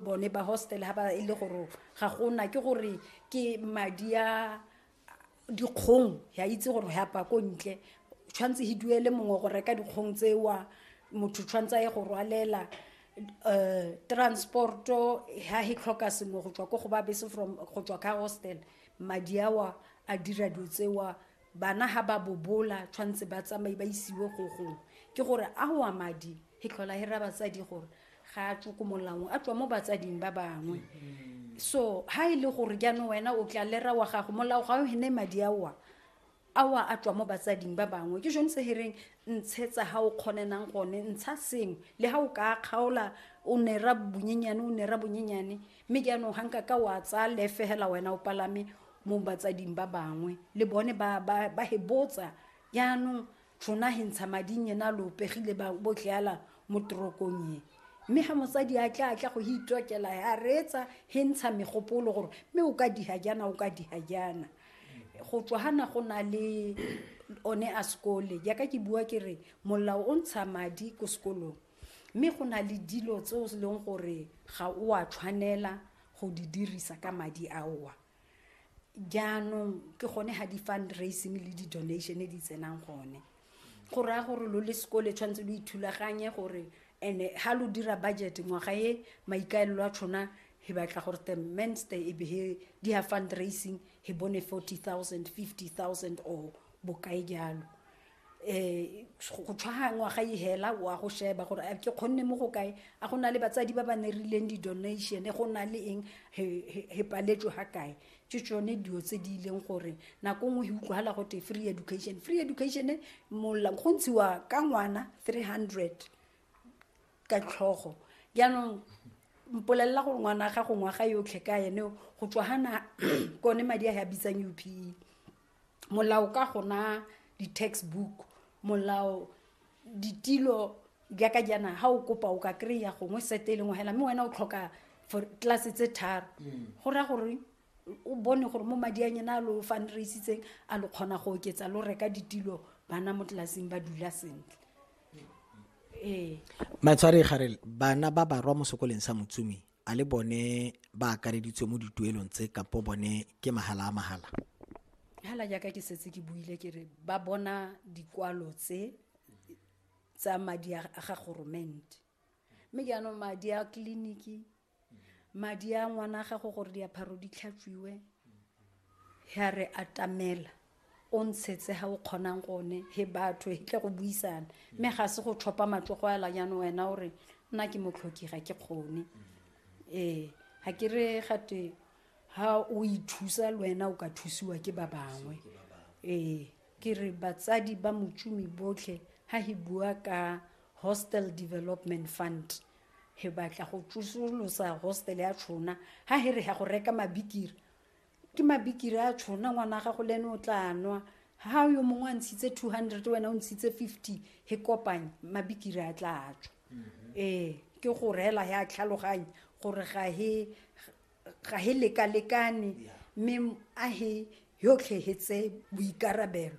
bone ba hostel ha ba e le gore ga gona ke gore ke madi a dikgong ya itse gore ya pa ko ntle tshwanetse he duele mongwe go reka dikgong tsewa motho tshwanetse a ye go rwalela um transporto ha he tlhoka sengwe go tswa ko go ba bese from go tswa ka hostel madi awa a dira dilo tsewa bana ha ba bobola tshwanetse ba tsamaye ba isiwe go gongwe ke gore a wa madi he tlhola he ra batsadi gore ga a tswe ko molaong a tswa mo batsading ba bangwe so ha e le gore jaanong wena o tla lera wa gago molao ga o hene madi aoa aoa a tswa mo batsading ba bangwe ke jone se hereng ntshetsa ha o kgonenang gone ntsha sengwe le ha o ka kgaola o nera bonyenyane o nera bonyenyane mme jaanong ga nka ka wa tsaya lefegela wena o palame mo batsading ba bangwe le bone ba hebotsa jaanong tšhona he ntsha mading yena lo pegile ba botleala mo torokong ye mme ga mosadi a tla a tla go itlokela a reetsa he ntsha megopolo gore mme o ka diha jana o ka diha jana go tswa gana go na le one a sekole jaaka ke bua ke re molao o ntsha madi ko sekolong mme go na le dilo tse o leng gore ga o a tshwanela go di dirisa ka madi aowa jaanong ke gone ga di-fundraising le di-donation di tsenang gone go raya gore lo le sekole tshwanetse lo ithulaganye gore and-e ga lo dira budget ngwaga e maikaelelo a tshona he batla gore the menster e be he di ya fundraising he bone forty thousand fifty thousand or bokae jalo um go tshwaga ngwaga e hela wa go sheba gore a ke kgonne mo go kae a go na le batsadi ba ba ne rileng di-donation go na le eng he paletswe ga kae ke tsone dilo tse di ileng gore nako nngwe e utlwagala go te free education free education mola go ntshiwa ka ngwana three hundred ka tlhogo jaanong mpolelela gore ngwana ga go ngwaga yotlhe ka ene go tswa gana kone madi a ya bitsang upe molao ka go na di-textbook molao ditilo jaaka jaana ga o kopa o ka kry-a gongwe sete e lengwe fela mme wena o tlhoka for tlase tse tharo mm. go raya gore o bone gore mo madi a nyena a lo fundraisitseng a lo kgona go oketsa lo reka ditilo bana mo tlelaseng ba dula sentle ee matshwari garel bana ba barwa mo sekoleng sa motsumi a le bone ba akareditswe mo dituelong tse kapo bone ke mahala a mahala hala jaaka ke setse ke buile ke re ba bona dikwalo tse tsa madi a ga goromente mme jaanong madi a tleliniki madi a ngwana a gago gore diapharo di tlhatswiwe ya re atamela o ntshetse ga o kgonang gone he batho he tle go buisana mme ga se go tlhopha matlogo ela jaanong wena o re nna ke motlhoki ga ke kgone ee ga ke re gate ga o ithusa le wena o ka thusiwa ke ba bangwe ee ke re batsadi ba motšomi botlhe ga he bua ka hostel development fund he batla go tsosolosa hostel ya tshona ga he re ya go reka mabikiri ke mabikiri a tshona ngwana gago le ene o tla nwa ha yo mongwe a ntshitse two hundred wena o ntshitse fifty he kopanye mabikiri a tla a tswa mm-hmm. ee ke go reela he a tlhaloganye gore ga he ga he lekalekane mme a he yotlhe he tse boikarabelo